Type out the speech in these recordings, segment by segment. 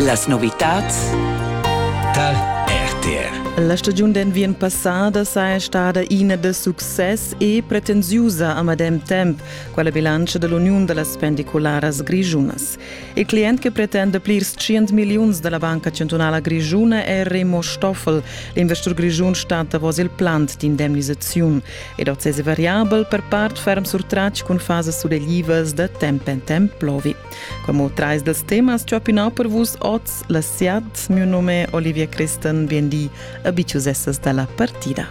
Las novitads tar RTR. La stagiun d'enviern passada saja stada ina da success e pretensiusa a medem temp, quella bilantscha da l'uniun da las pendicularas grischunas. Il client che pretenda plirs 100 milliuns da la Banca Chantunala Grischuna è Remo Stoffel. L'investur grischun stat davos il plant d'indemnisaziun ed oz è variabel per part ferm surtratg cun fasas suleglivas da temp en temp plovi. Como trais dels temas ch'opinau per vus oz la siat, mio nome Olivia Christen, bien di, abiciusessas dalla partida.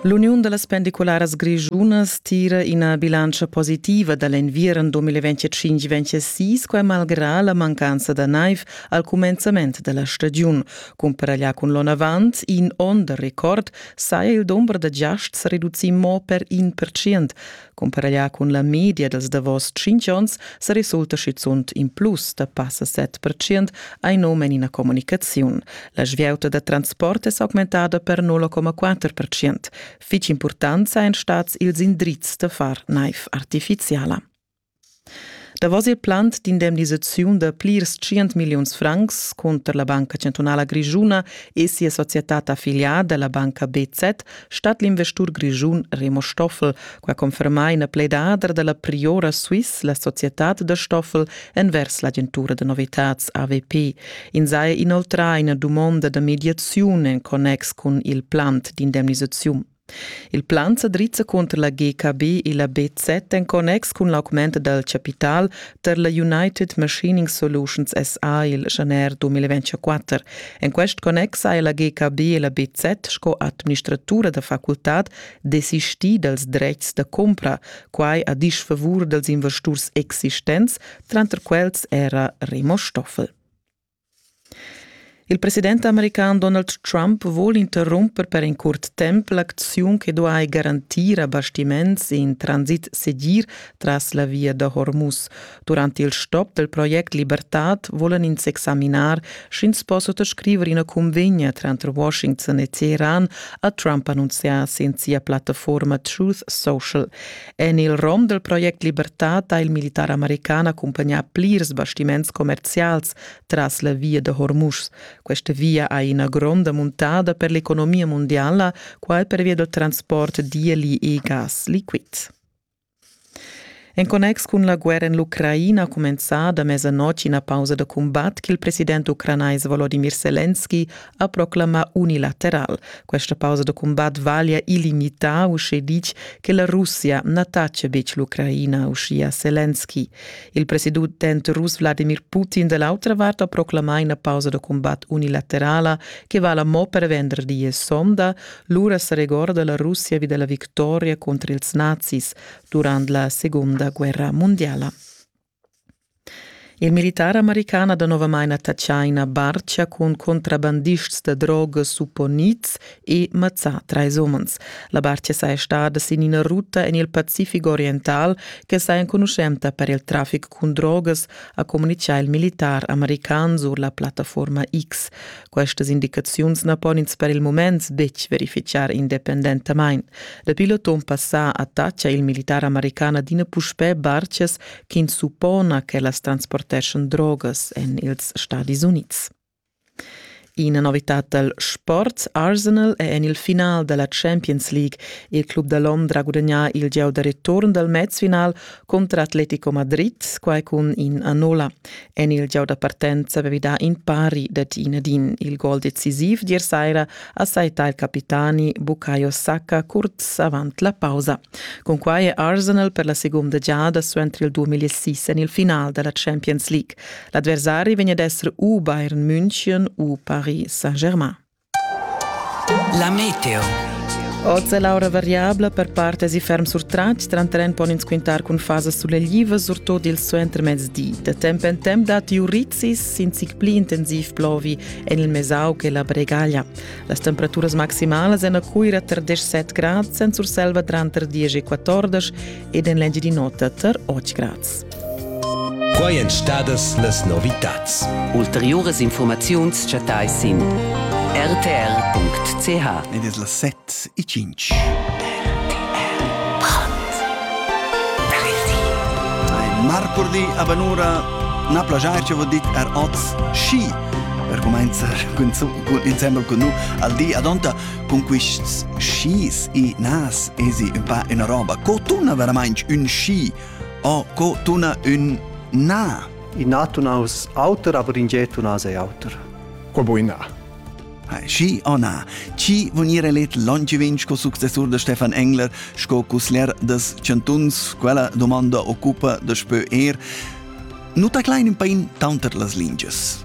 L'Uniun da las pendicularas grischunas tira ina bilantscha positiva da l'enviern 2025-26, quai malgrà la mancanza da naiv al cumenzament da la stagiun, cumpara là cun l'onavant in onn da record saja il dumber da giasts reducì mo per in percent. Cumparaglià cun la media dals davos tschintg onns sa resulta schizunt in plus da passa 7 percent, hai num en ina communicaziun. La svieuta da transport è s'augmentada per 0,4 percent. Fitg important sajan stads ils indrizs da far naiv artifiziala. Davos il plant d'indemnisaziun da plirs tschient milliuns francs cunter la Banca chantunala grischuna e sia societad affiliada, la banca BZ, stat l'investur grischun Remo Stoffel. Qua conferma ina pledadra da la Priora Swiss la societad da Stoffel envers l'agentura da novitads AVP. Ins ha inoltrà ina dumonda da mediaziun en connex cun il plant d'indemnisaziun. Il plan sa drizza cunter la GKB e la BZ en connex cun l'augment dal chapital tar la United Machining Solutions SA il januar 2024. En quest connex ha la GKB e la BZ sco administratura da facultad desistì dals dretgs da cumpra, quai a disfavur dals investurs existents, tranter quels era Remo Stoffel. Il president american Donald Trump vul interrumper per in curt temp l'acziun che duai garantir a bastiments in transit segir tras la via da Hormuz. Durant il stop del project Libertad volan ins examinar, sch'ins po sottoscriver ina cunvegna tranter Washington e Teheran, ha Trump annunzià sin sia plattaforma Truth Social. En il rom del project Libertad ha il militar american accompagnà plirs bastiments commerzials tras la via da Hormuz. Questa via ha ina gronda muntada per l'economia mondiala, quai pervia dal transport d'eli e gas liquid. En connex cun la guerra en l'Ucraina ha cumenzà da mezzanotte ina pausa da combat ch'il president ucranais Volodymyr Zelensky ha proclamà unilateral. Questa pausa da cumbat vaglia illimitar, uschè ditg, che la Russia na tacia betg l'Ucraina, uschia Zelensky. Il president rus Vladimir Putin da l'autra vart ha proclamà ina pausa da cumbat unilaterala che vala mo per venderdi e sonda. Lura sa regorda la Russia vi della victoria contro ils nazis durant la seconda guerra mondiala. Il militar american ha danovamain attatschà ina bartga cun contrabandists da drogas supponids e mazzà trais umans. La bartga saja stada sin ina ruta en il Pacific oriental che saja enconuschenta per il traffic cun drogas, ha communitgà il militar american sur la plattaforma X. Questas indicaziuns na pon ins per il mument betg verifitgar independentamain. Dapi l'auton passà attaccia il militar american adina puspè bartgas ch'ins suppona ch'ellas transporteschan drogas en ils Stadis Unids. Ina novitad dal sport Arsenal è en il final da la Champions League. Il club da Londra ha gudagnà il gieu da return dal match-final contro Atletico Madrid, quai cun in a nolla. En il gieu da partenza avevi dà in pari dad in ad in il gol decisiv d'ier saira a saità il capitani Bukayo Saka curz avant la pausa. Cunquai è Arsenal per la segunda giada suenter il 2006 en il final da la Champions League. L'adversari vegn ad essere u Bayern München u Paris Saint-Germain. La meteo. Oz è l'aura variabla per part èsi ferm surtratg, tranter en pon ins quintar cun fasas suleglivas, surtut il suentermezdi. Da temp en temp datti urizis, sin zic pli intensiv plovi en il Mesau che la Bregaglia. Las temperaturas maximalas èn a Cuira tar 17 grads, en Surselva tranter 10 e 14 ed en l'Engiadin'Ota tar Otgraz. Quai èn stadas las novitads. Ulteriuras informaziuns chattais sin rtr.ch. Ed es las set e cinc. Marcurdi a Banura na plajair ci vo dit er oz schi per comenzar cun, insembel cun nu al di ad onta Con quists skis e nas esi ün pa üna roba. Co tuna veramaing ün ski o co tuna ün na? I na tuna us auter, aber in ge tuna sei auter. Qual bo i na? Ski o na? Chi von ire let longevin sco successur da Stefan Engler, sco cusler das Chantuns, quella domanda occupa da spö er, nu ta klein in pain taunter las lingias.